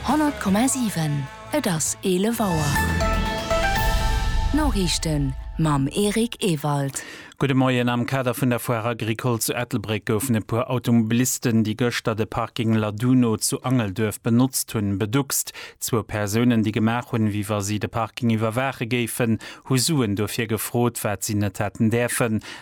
100,7 Et ass 11 Auer. D'Noriichten mam Eric Ewald. Gudde Moien. Am Kader vun der Foire Agricole zu Ettelbréck goufen e puer Automobilisten, déi gëschter de Parking Laduno zu Angelduerf benotzt hunn, beduckst. Zwou Persounen, déi gemaach hunn, wéi wa si de Parking iwwerwaache géifen, hu Suen dofir gefrot, wat si net hätten däerfen.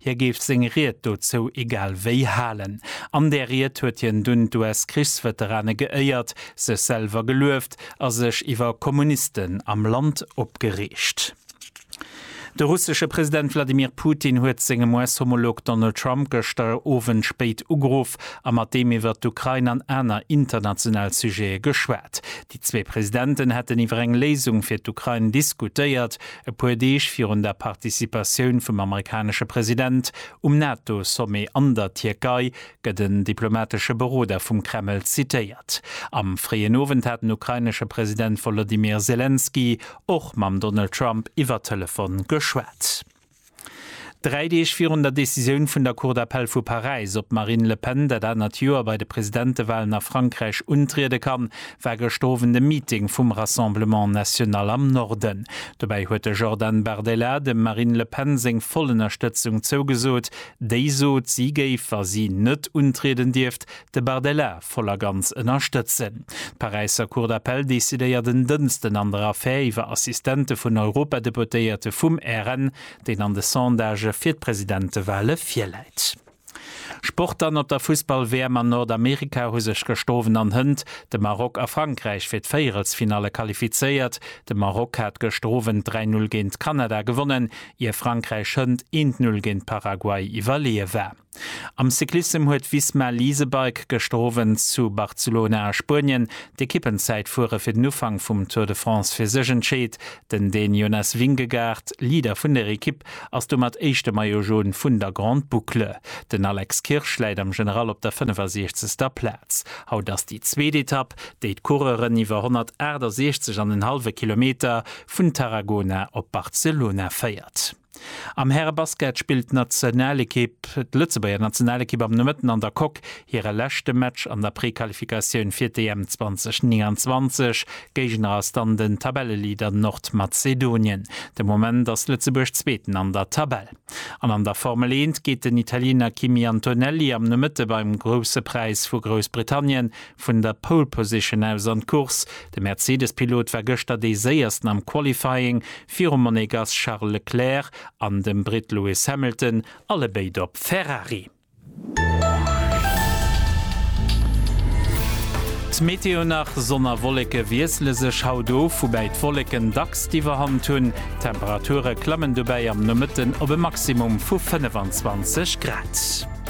Hie géif seng Ried dozou egal wéi halen. An där Ried huet hien dunn d'US-Krichsveterane geéiert, sech selwer gelueft a sech iwwer Kommunisten am Land opgereegt. De russesche President Wladimir Putin huet sengem US-Homolog Donald Trump gëschter Owend spéit ugeruff a mat deem iwwer d'Ukrain an aner international Sujete geschwat. Déi zwee Presidenten hätten iwwer eng Léisung fir d'Ukrain diskutéiert, E puer Deeg virun der Participatioun vum amerikanesche President um NATO-Sommet an der Tierkei gëtt en diplomatesche Beroder vum Kreml zitéiert. Am fréien Owend hat den ukrainesche President Wolodymyr Selenskyj och mam Donald Trump iwwer Telefon geschwat. Dräi Deeg virun der Decisioun vun der Cour d'appel vu Paräis, ob d'Marine Le Pen dat anert Joer bei de Presidentewalen a Frankräich untriede kann, war gëschter Owend e Meeting vum Rassemblement National am Norden. Dobäi huet de Jordan Bardella dem Marine Le Pen seng voll Ënnerstëtzung zougesot. Déi sot, si géif, wa si net untrieden dierft, De Bardella voll a ganz ënnerstëtzen. D'Paräisser Cour d'appel decidéiert en Dënsten an der Affär iwwer Assistente vun Europadeputéierte vum RN, deen an de Sondagë fir d'Presidentewale virläit. Sport dann, Op der Fussball-WM an Nordamerika hu sech gestowen an Hënt de Maroc a Frankräich fir d'Véierelsfinalle qualifizéiert. De Maroc hat gestowen 3 Null géint Kanada gewonnen, ier Frankräich Hënt eent Null géint Paraguay iwwerleeë war. Am Cyclissem huet Visma Leasebike gëschter Owend zu Barcelona a Spuenien d'Ekippenzäitfuere fir den Ufank vum Tour de France fir sech entscheet. Den Dän Jonas Vingegaard, Leader vun der Ekipp, ass domat éischte Maillot Jaune vun der Grande Boucle. Den Alex Kirsch läit am General op der 65. Plaz. Haut ass déi zweet Etapp, déi d'Coureuren iwwer 168 an en hallwe Kilometer vun Tarragona op Barcelona féiert. Am Härebasket spillt d'Nationalekipp, d'Lëtzebuerger Nationalekipp am Nomëtten an der Coque hire leschte Match an der Prequalifikatioun fir d'EM 2029. Géigner ass dann den Tabelleleader Nordmazedonien. De Moment ass Lëtzebuerg Zweeten an der Tabell. An an der Formel Eent geet den Italiener Kimi Antonelli am Nomëtte beim Grousse Präis vu Groussbritannien vun der Pole Position aus an d'Course. De Mercedes-Pilot war gëschter dee Séiersten am Qualifying, virum Monegass Charles Leclerc an dem Britt Lewis Hamilton, allebéid op Ferrari. D'Meteo nach, Sonn a Wolleke wiessele sech haut of, woubäi d'Wolleken dacks d'Iwwerhand hunn. D'Temperature klammen dobäi am Nomëtten op e Maximum vu 25 Grad.